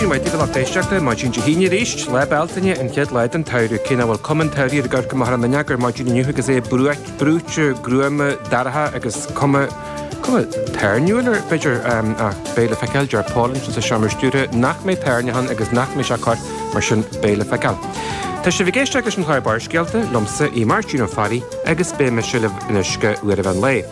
Maidin mhaith daoibh, a lucht éisteachta, maidin Dé hAoine arís, Lá Bealtaine, an chéad lá den tsamhradh, cé nach bhfuil cuma an tsamhraidh air ag amharc amach ar an fhuinneog ar maidin inniu agus é brúite, gruama, dorcha agus cuma, cuma toirniúil air, b'fhéidir. Ach beidh le feiceáil, deir Pauline sa seomra stiúrtha nach mbeidh toirneach ann agus nach mbeidh sé ag cur, mar sin beidh le feiceáil. Tá sibh ag éisteacht leis an chlár Barrscéalta, liomsa, Aodh Máirtín Ó Fearraigh, agus beidh mise libh anois go huair an mheán lae.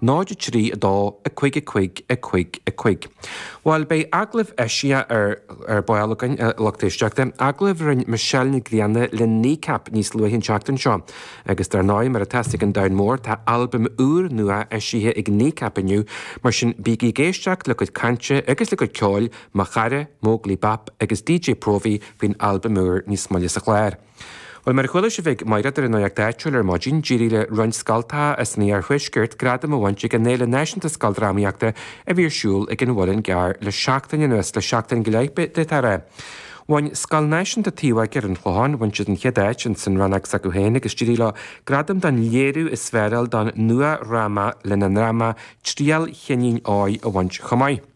0 3 2 5 5 5 5 Bhuel, beidh agallamh eisiach ar ball againn, a lucht éisteachta, agallamh a rinne Michelle Nic Grianna le Kneecap níos luaithe an tseachtain seo. Agus dar ndóigh, mar atá a fhios ag an domhan mór, tá albam úr nua eisithe ag Kneecap inniu, mar sin bígí ag éisteacht le cuid cainte agus le cuid ceoil Mo Chara, Móglaí Bap agus DJ Próvaí faoin albam úr níos moille sa chlár. Bhuel, mar a chuala sibh ag Maighréad ar an Nuacht Áitiúil ar maidin, d'éirigh le roinnt scoltacha as an iarthuaisceart gradam a bhaint ag an fhéile náisiúnta scoildrámaíochta a bhí ar siúl ag an Mhuileann gCearr le seachtain anuas, le seachtain go leith de, tar é. Bhain Scoil Náisiúnta Taobhóige ar an Chlochán, bhain siad an chéad áit ins an rannóg s'acu féin agus d'éirigh leo gradam don léiriú is fearr don nuadhráma lena ndráma Triail Chinnín Óir a bhaint chomh maith.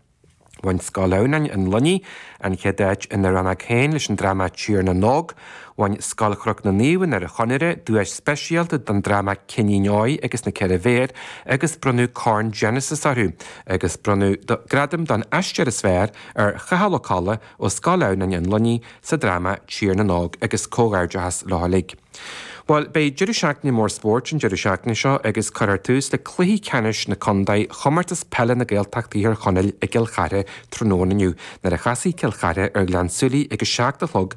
Bhain Scoil Adhamhnáin, An Luinnigh, an chéad áit ina rannóg féin leis an dráma 'Tír na nÓg'. Bhain Scoil Chnoc na Naomh i nDoire Chonaire duais speisialta don dráma 'Cinnín Óir agus na Ceithre Bhéar' agus bronnadh Corn Genesis orthu agus bronnadh gradam don Aisteoir is Fearr ar Chathal Ó Colla ó Scoil Adhamhnáin, An Luinnigh sa dráma Tír na nÓg agus comhghairdeachas leo uilig. Bhuel, beidh Deireadh Seachtaine Mór Spóirt an deireadh seachtaine seo agus cuirfear tús le cluichí ceannais na contae Chomórtas Peile na Gaeltachta Thír Chonaill i gCill Chartha tráthnóna inniu nuair a chasfaidh Cill Chartha ar Ghleann tSúilí ag a seacht a chlog